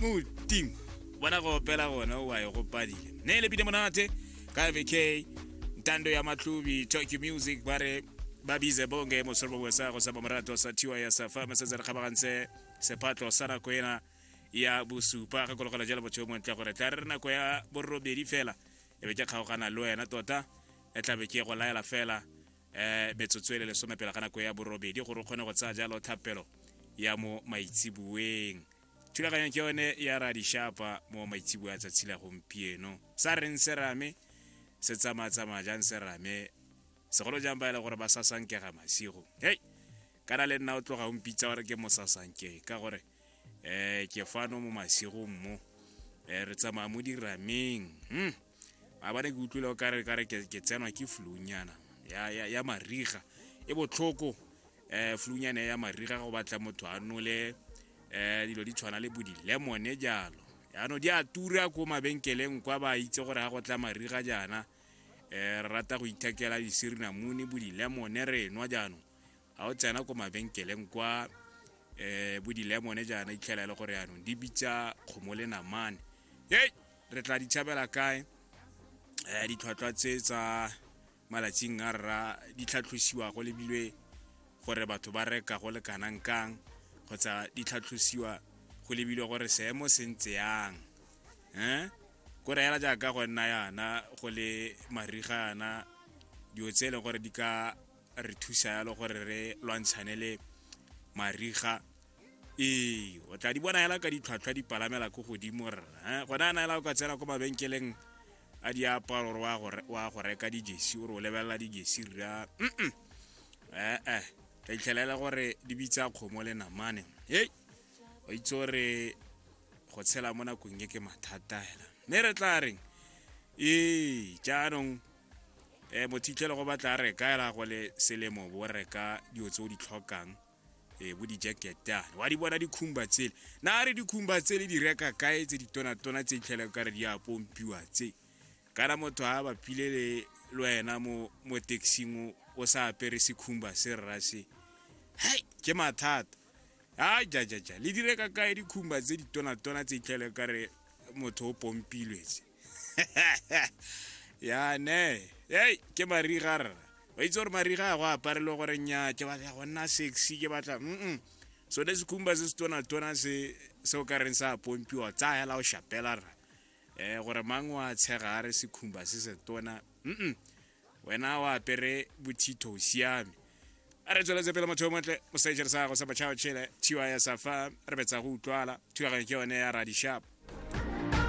modimo bona go opela gona o a e gopadile ne e lebile monate ka vk ntando ya matlubi tokyo music ba re ba bize bonge mosoro bongwe sa go sa bomorato sa thiwa ya sa fa mesetse re kgabagantse sephatlo sa nako ena ya bosupa ga kologela jalo motho yo montle gore tla re re nako ya borobedi fela e be ke kgaogana le wena tota e tlabe ke go laela fela um metsotso e le lesome pela ka nako ya borobedi gore o kgone go tsaya jalo thapelo ya mo maitseboeng thulaganyo ke yone ya radishapa mo maitsebo ya tsatsi la gompieno sa reng se rame se tsamaya-tsamaya jang se rame segolo jang ba e le gore ba sasankega masigo hei kana le nna o tloga o mpitsa gore ke mosasanke ka gore um ke fano mo masigong mo um re tsamaya mo dirameng hmm. a ba ne ke utlwile o kare kare ke ke tsenwa ke flunyana ya ya ya mariga e botlhoko eh flunyana ya mariga go batla motho a nole eh dilo di tshwana le bo di lemon jalo yaanong di a tura ko mabenkeleng kwa ba itse gore ga go tla mariga jaana eh re rata go ithekela disirinamune bo di lemon re nwa jaanong ga o tsena ko mabenkeleng kwa eh bo di lemon jaana itlhela e le gore yaanong di bitsa kgomo le namane hey re tla di tshabela kae um ditlhwatlhwa tse tsa malatsing a rra di tlhatlhosiwa go lebilwe gore batho ba reka go le kanang kang kgotsa di tlhatlhosiwa go lebilwe gore seemo se ntse yang um ko reela jaaka go nna yana go le mariga yana dilo tse e leng gore di ka re thusa yalo gore re lwantshane le mariga ee o tla di bona hela ka ditlhwatlhwa di palamela ko godimo rra eh, gona a na hela o ka tsena ko mabenkeleng a diaparo gore wa go reka dijesi ore o lebelela dijesi rra mm ee eh, tla itlhelela gore di bitsa kgomo le namane hei o itse gore go tshela mo nakong e ke mathata hela mme re tla reng ee jaanong um mothitlhele go batla re ka era go le selemo bo reka dilo tse o di tlhokang um bo di-jacketane wa di bona dikhumba tsele na re dikhumba tsele di reka kae tse ditonatona tse itlhele ka re di a pompiwa tse kana motho a bapile le lwena mo mo taxing o sa apere sekhumba se rra se hai ke mathata a jajaja le dire ka kae dikhumba tse ditonatona tse itlhele ka re motho o pompilwetse yane ei ke mariga rra ba itse gore mariga a go aparelwe gore nya ke batla go nna sexy ke batla mm so le sekhumba se se tona-tona se se o ka reng sa pompiwa tsa hela o shapela rra um gore mang wa tshega a re sekhumba se se tona mm wena o apere bothitho o siame a re tsweletse pele motho yo montle mosejere sa gago sa batšhao tšhele thiwa ya safa re betsa go utlwala thulaganyo ke yone ya radishapa